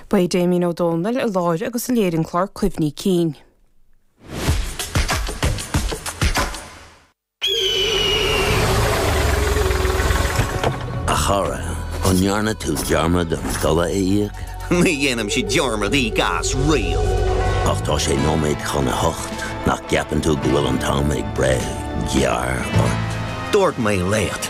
Beidh Damien Ó Dónaill a láithrigh agus a léirigh an clár cuimhní cinn. A chara, an ndearna tú dearmad an dola a íoc? Ní dhéanaimse dearmad íoc as riamh! Ach tá sé nóiméad chun a hocht, nach gceapann tú go bhfuil an t-am ag breith gearr ort? Dúirt mé leat!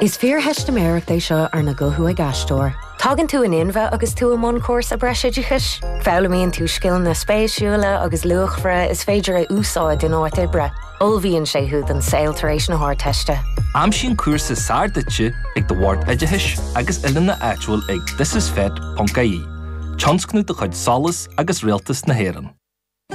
Is fíortheistiméireacht é seo arna guthú ag aisteoir. Tagann tú in inmhe agus tú i mbun cúrsa breisoideachais. Foghlaimíonn tú scileanna spéisiúla agus luachmhara is féidir a úsáid in áit oibre. Ullmhaíonn sé thú don saol tar éis na hArdteiste. Aimsigh an cúrsa is fearr duitse ag do Bhord Oideachais agus Oiliúna áitiúil ag thisisfet.ie, tionscnamh de chuid Solas agus Rialtas na hÉireann.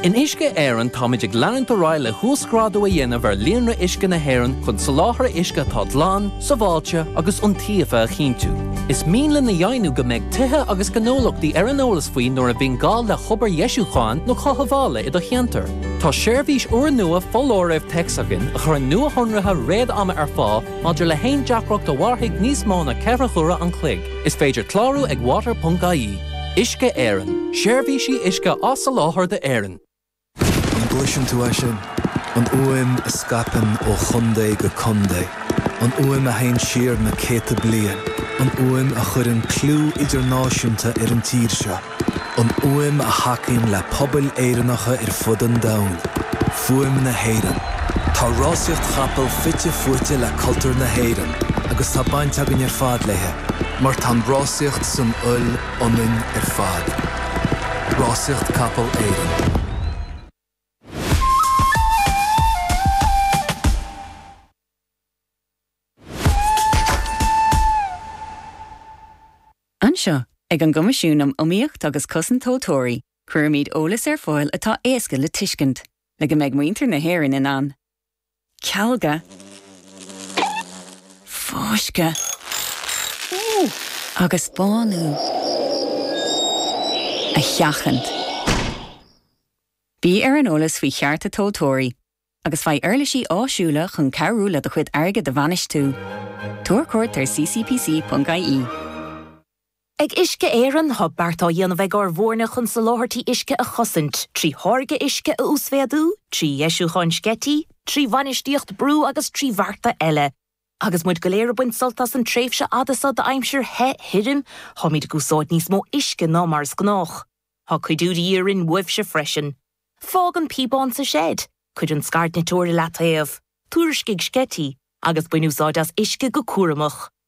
In Uisce Éireann táimid ag leanúint ar aghaidh le huasghrádú a dhéanamh ar líonra uisce na hÉireann chun soláthar uisce atá glan, sábháilte agus iontaofa a chinntiú. Is mian linn a dheimhniú go mbeidh tithe agus gnólachtaí ar an eolas faoi nuair a bhíonn gá le hobair dheisiúcháin nó chothabhála i do cheantar. Tá seirbhís úrnua foláirimh téacs againn a chuireann nuashonruithe réad-ama ar fáil maidir le haon deacracht a mhairfidh níos mó ná ceithre huaire an chloig. Is féidir clárú ag water.ie. Uisce Éireann, Seirbhísí uisce á soláthar d'Éirinn. An gcloiseann tú é sin? An fhuaim a scaipeann ó chontae go contae. An fhuaim a théann siar na céadta bliain. An fhuaim a chuireann clú idirnáisiúnta ar an tír seo. An fhuaim a thacaíonn le pobail Éireannacha ar fud an domhain. Fuaim na hÉireann. Tá rásaíocht chapall fite fuaite le cultúr na hÉireann agus tá baint againn ar fad léi. Mar tá an rásaíocht san fhuil ionainn ar fad. Rásaíocht Capall Éireann. Anseo, ag an gCoimisiún um Iomaíocht agus Cosaint Tomhaltóirí, cuirimid eolas ar fáil atá éasca le tuiscint, le go mbeidh muintir na hÉireann in ann cealga, fáisceadh agus bánú a sheachaint. Bí ar an eolas faoi chearta tomhaltóirí agus faigh uirlisí áisiúla chun cabhrú le do chuid airgid a bhainistiú. Tabhair cuairt ar ccpc.ie. Ag Uisce Éireann, tá beart á dhéanamh ag ár bhfoirne chun soláthairtí uisce a chosaint, trí tháirgeadh uisce a uasmhéadú, trí dheisiúcháin sceití, trí bhainistíocht brú agus trí bhearta eile. Agus muid go léir ag baint sult as an tréimhse fhada seo d'aimsir the, thirim, táimid ag úsáid níos mó uisce ná mar is gnách. Tá cuidiú de dhíth orainn uaitse freisin. Fág an píobán sa seid, cuir an scairdniteoir i leataobh, tuairiscigh sceití, agus bain úsáid as uisce go cúramach.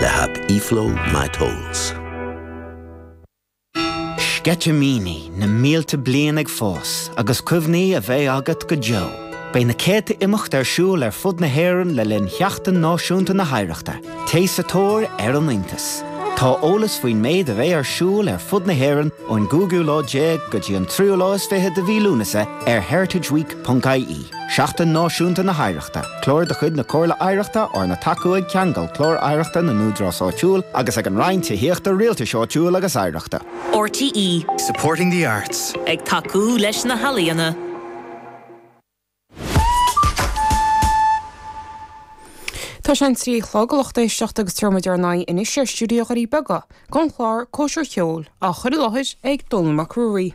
le hAip eFlow MyTotals. Sceitimíní na mílte bliain ag fás agus cuimhní a bheidh agat go deo. Beidh na céadta imeacht ar siúl ar fud na hÉireann le linn Sheachtain Náisiúnta na hOidhreachta. Téigh sa tóir ar an iontas! Tá eolas faoin méid a bheidh ar siúl ar fud na hÉireann ón gcúigiú lá déag go dtí an tríú lá is fiche de mhí Lúnasa ar heritageweek.ie. Seachtain Náisiúnta na hOidhreachta, Clár de chuid na Comhairle Oidhreachta arna tacú ag Ceangal, Clár Oidhreachta na nÚdarás Áitiúil, agus ag an Roinn Tithíochta, Rialtais Áitiúil agus Oidhreachta. RTÉ. Supporting the arts. Ag tacú leis na healaíona. Tá sé an trí a chlog, lucht éisteachta agus téir muid ar aghaidh anois ar stiúideo Dhoirí Beaga, don chlár, cóisir cheoil, á chur i láthair ag Dónall Mac Ruairí.